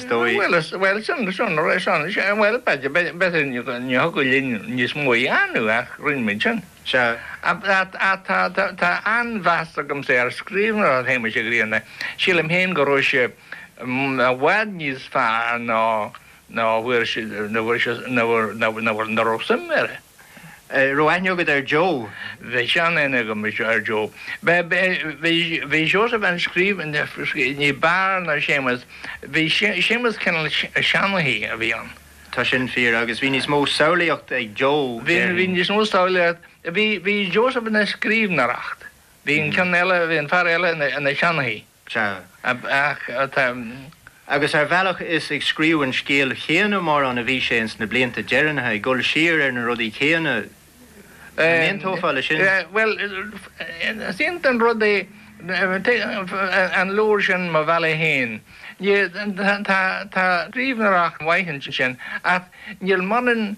Bhuel, sin an rud é, Seán. Sea, bhuel, b'fhéidir, ní thiocfadh linn níos mó a dhéanamh, ach rinne muid sin. Sea, ach tá an-mheas agamsa ar scríbhneoireacht Shéamuis Uí Ghrianna. Sílim féin go raibh sé i bhfad níos fearr ná a bhfuair sé, nó a raibh suim air. An raibh aithne agat ar Joe? Bhí seanaithne agam ar Joe. Bhí Seosamh ina scríobhaí ní b'fhearr ná Séamus. Bhí Séamus cineál seanchaí a bhí ann. Tá sin fíor. Agus bhí níos mó samhlaíocht ag Joe déarfainn. Bhí níos mó samhlaíocht. Bhí Seosamh ina scríbhneoireacht. Bhí an ceann eile, bhí an fear eile ina seanchaí. Agus ar bhealach is ag scríobh an scéil chéanna mórán a bhí sé ins na blianta deireanacha, ag dul siar ar na rudaí céanna. An n-aontófá le sin? Bhuel, is iontach an rud é an leabhar sin Mo Bhealach Féin. Tá scríbhneoireacht mhaith ansin ach níl mórán ann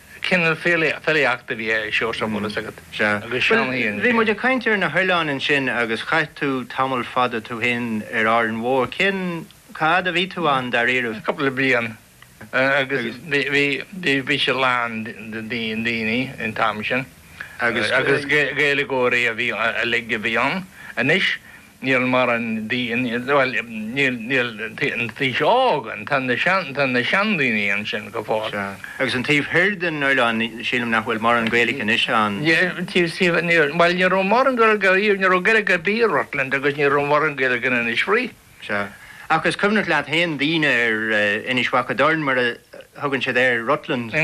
Cineál filíochta a bhí ar Seosamh, an bhfuil fhios agat, agus Seán Fhiann Bhí muid ag caint ar na hoileáin ansin agus chaith tú tamall fada tú féin ar Árainn Mhór. Cén fhad a bhí tú ann dáiríre? Cúpla bliain agus bhí siad lán de daoine an t-am sin agus Gaeilgeoirí uilig a bhí ann. Anois Níl mórán, bhuel, níl an t-aos óg ann tá na sean tá na sean daoine ansin go fóill. Sea. Agus an taobh thiar den oileán sílim nach bhfuil mórán Gaeilic anois ann. Taobh taobh níl bhuel ní raibh mórán Gaeilge ariamh ní raibh Gaeilge ar bith i Rutland agus ní raibh mórán Gaeilge in Inis Fraoich. Sea. Ach is cuimhneach leat féin daoine ar Inis Mhic an Doirn mar a thugann siad air Rutland.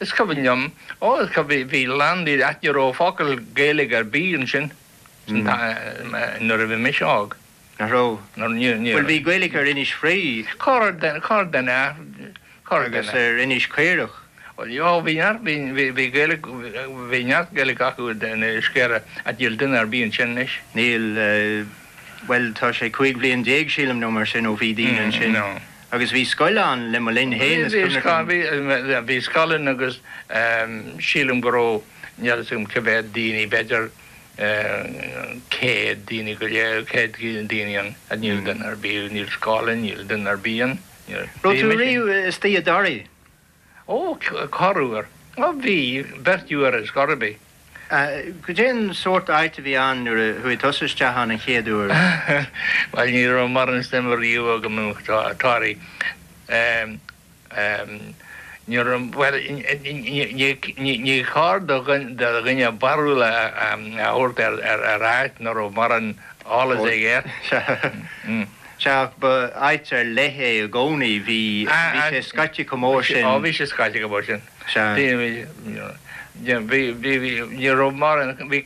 Is cuimhin liom. Ó is cuimhin bhí a lán daoine ach ní raibh focal Gaeilge ar bith ansin. nuair a bhí mise óg, nach raibh? Bhuel, bhí Gaeilic ar Inis Fraoigh. Corrdhuine, corrdhuine, a, corrdhuine. Agus ar Inis Caorach. Bhuel, ó, bhí neart, bhí, bhí, bhí Gaeilic, bhí neart Gaeilic acu in Inis Caorach, ach níl duine ar bith ansin anois. Níl, bhuel, tá sé cúig bliana déag, sílim, nó mar sin ó bhí daoine ansin. No. Agus bhí scoil ann le mo linn fhéin is cuimhin liom. Bhí, bhí, bhí scoil ann agus sílim go raibh, níl 'fhios a'm cé mhéad daoine, b'fhéidir, 100 duine go léir, 100 duine ann, ach níl duine ar bith, níl scoil ann, níl duine ar bith ann. Raibh tú riamh istigh i dToraigh? Ó, corruair. Ó, bhí, beirt uair is corr ar bith. Goidé an sórt áit a bhí ann nuair a chuaigh tusa isteach ann an chéad uair? Bhuel, ní raibh mórán suime riamh agam i dToraigh. Ní cóir do dhuine barúil a thabhairt ar áit nach raibh morán eolais aige. Sea, ba áit ar leith é i gcónaí, bhí sé scaite chomh mór sin. Ó, bhí sé scaite go mór sin. Sea. Bhí, bhí, bhí, ní raibh morán, bhí,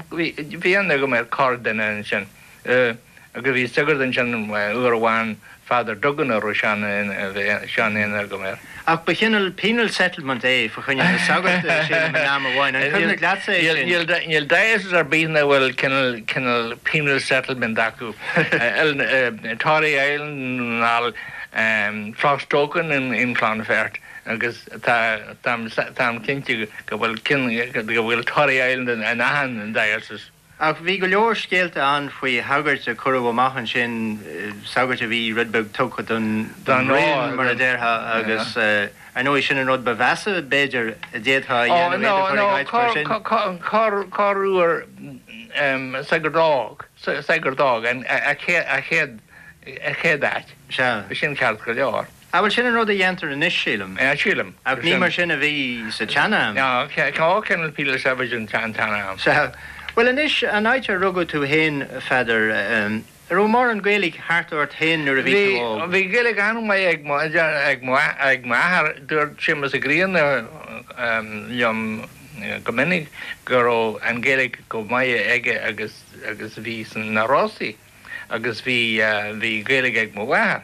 bhí, bhí aithne agam ar chorrdhuine ansin. agus bhí sagart ansin uair amháin, Father Duggan a raibh sean-aithne agam air. Ach ba chineal penal settlement é fa choinne na sagairt silim in am amháin, an cuimhin leatsa é sin? Níl diocese ar bith nach bhfuil cineal penal settlement acu, Tory Island, Clostoken in Clonfert agus tá mé cinnte go bhfuil Tory Island in achan diocese. Ach bhí go leor scéalta ann faoi shagairt a cuireadh amach ansin, sagairt a bhí rud beag tugtha don bhraon, mar a déarfá, agus ar ndóigh sin an rud ba mheasa, b'fhéidir, a d'fhéadfá a dhéanamh, iad a chur ag áit mar sin. Ó, no, no, corruair sagart d'fhág a chéad áit. Sea. Bhí sin ceart go leor. Ah bhuel sin an rud a dhéantar anois sílim. Yeah sílim. Ach ní mar sin a bhí sa tsean-am. Ná cá cineál píle saibhir an tsean-am. Sea. Bhuel anois, an áit ar rugadh tú fhéin a Pheadair, a' raibh mórán Gaeilge thart ort fhéin nuair a bhí tú óg? Bhí, bhí Gaeilge an-mhaith ag mo, ag mo, ag m'athair. Dúirt Séamus Ó Grianna liom go minic go raibh an Ghaeilge chomh maith aige agus, agus a bhí sna Rosa agus bhí, bhí Gaeilge ag mo mháthair.